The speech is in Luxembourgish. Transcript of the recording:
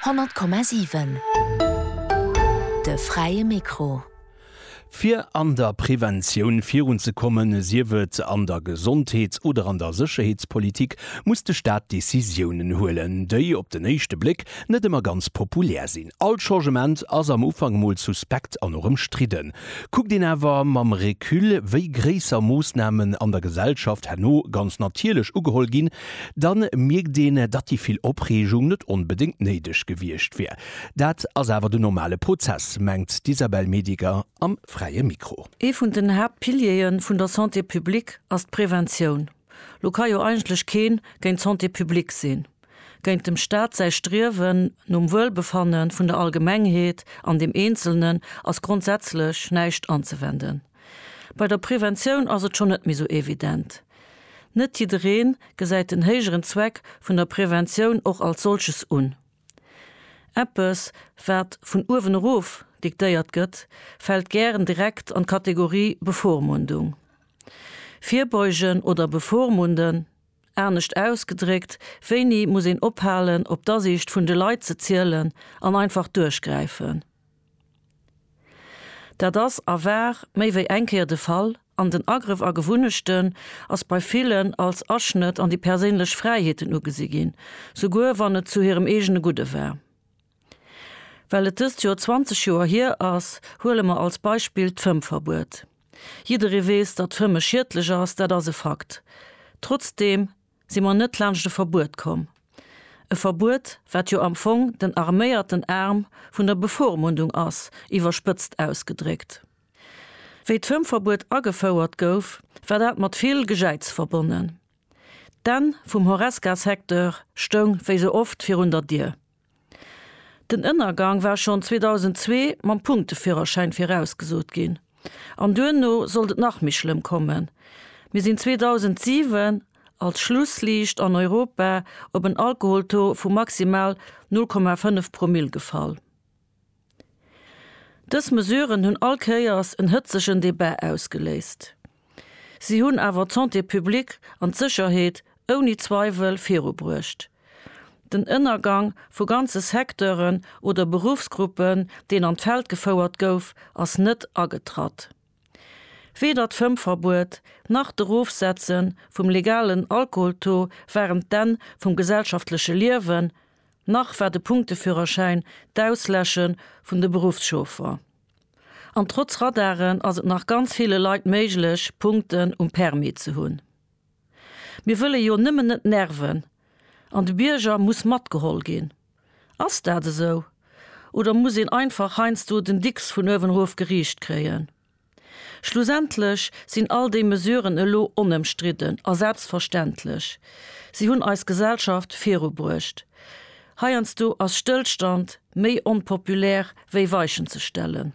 Honnert Komma siwen, de fräie Mikro. Fir an der Preventioun virunzekommen, sief et an der Gesondheets oder an der Sécherheetspolitik, muss de Staat Decisiounen huelen, déi op den éischte Bléck net ëmmer ganz populär sinn. All Changement ass am Ufank emol suspekt an och ëmstridden. Kuckt een awer mam Recul, wéi gréisser Moossnamen an der Gesellschaft herno ganz natierlech ugeholl ginn, Da mierkt een, datt déi vill Opreegung net onbedéngt néideg gewiescht wier. Dat ass awer den normale Prozess, mengt d'Isabelle Mediger am Fräie Mikro. Ee vun den Haaptpiliere vun der Santé publique ass d'Preventioun. Lo ka jo eigentlech kee géint d'Santé publique sinn. Géint dem Staat säi Striewen nom Wuelbefanne vun der Allgemengheet an dem Eenzelnen ass grondsätzlech näischt anzewenden. Bei der Preventioun ass et schonn net méi sou evident. Net jiddereen gesäit den héijeren Zweck vun der Präventioun och als solches un. Eppes wat vun uewen erof diktéiert gëtt, fällt gären direkt an d'Kategorie Bevormundung. Virbeugen oder bevormunden? Anescht ausgedréckt, wéini muss een ophalen op d'Asiicht vun de Leit ze zielen an einfach duerchgräifen? Dat ass a war méi wéi eng Kéier de Fall, an den Agrëff a Gewunnechten ass bei villen als Aschnëtt an déi perséinlech Fräiheeten ugesi ginn, souguer wann et zu hirem eegene Gudde war. Well et dëst Joer 20 Joer hier ass, huele mer als Beispill d'Fëmmverbuet. Jidderee weess, datt Fëmme schiedlech ass, dat ass e Fakt. Trotzdeem si mer net laanscht e Verbuet komm, e Verbuet, wat jo am Fong den arméierten Aarm vun der Bevormundung ass, iwwerspëtzt ausgedréckt. Wéi d'Fëmmverbuet agefouert gouf, war dat mat vill Gejäiz verbonnen. D'Enn vum Horesca-Secteur stoung wéi sou oft virun der Dier. Den Ënnergang war schonn 2002 mam Punkteführerschäin virausgesot ginn. An duerno sollt et nach méi schlëmm kommen. Mir sinn 2007 als Schlussliicht an Europa op en Alkoholtaux vu maximal 0,5 Promill gefall. Dës Mesuren hunn all Kéiers en hëtzegen Debat ausgeléist. Si hunn awer d'Santé publique an d'Sécherheet ouni Zweiwel virubruecht. Den Ënnergang vu ganze Secteuren oder Beruffsgruppen, deen an d'Feld gefouert gouf, ass net agetratt. Weder d'Fëmmverbuet nach d'Erofsetze vum legalen Alkoholtaux waren d'Enn vum gesellschaftleche Liewen, nach war de Punkteführerschäin d'Ausläsche vun de Beruffschauffer. An trotz Radaren ass et nach ganz ville Leit méiglech, Punkten um Permis ze hunn. Mir wëlle jo nëmmen net nerven an de Bierger muss matgeholl ginn. Ass dat esou? Oder muss een einfach heiansdo den Dicks vun uewen erof geriicht kréien? Schlussendlech sinn all déi Mesuren elo onëmstridden a selbstverständlech. Si hunn eis Gesellschaft virubruecht. Heiansdo ass Stëllstand méi onpopulär wéi Weichen ze stellen.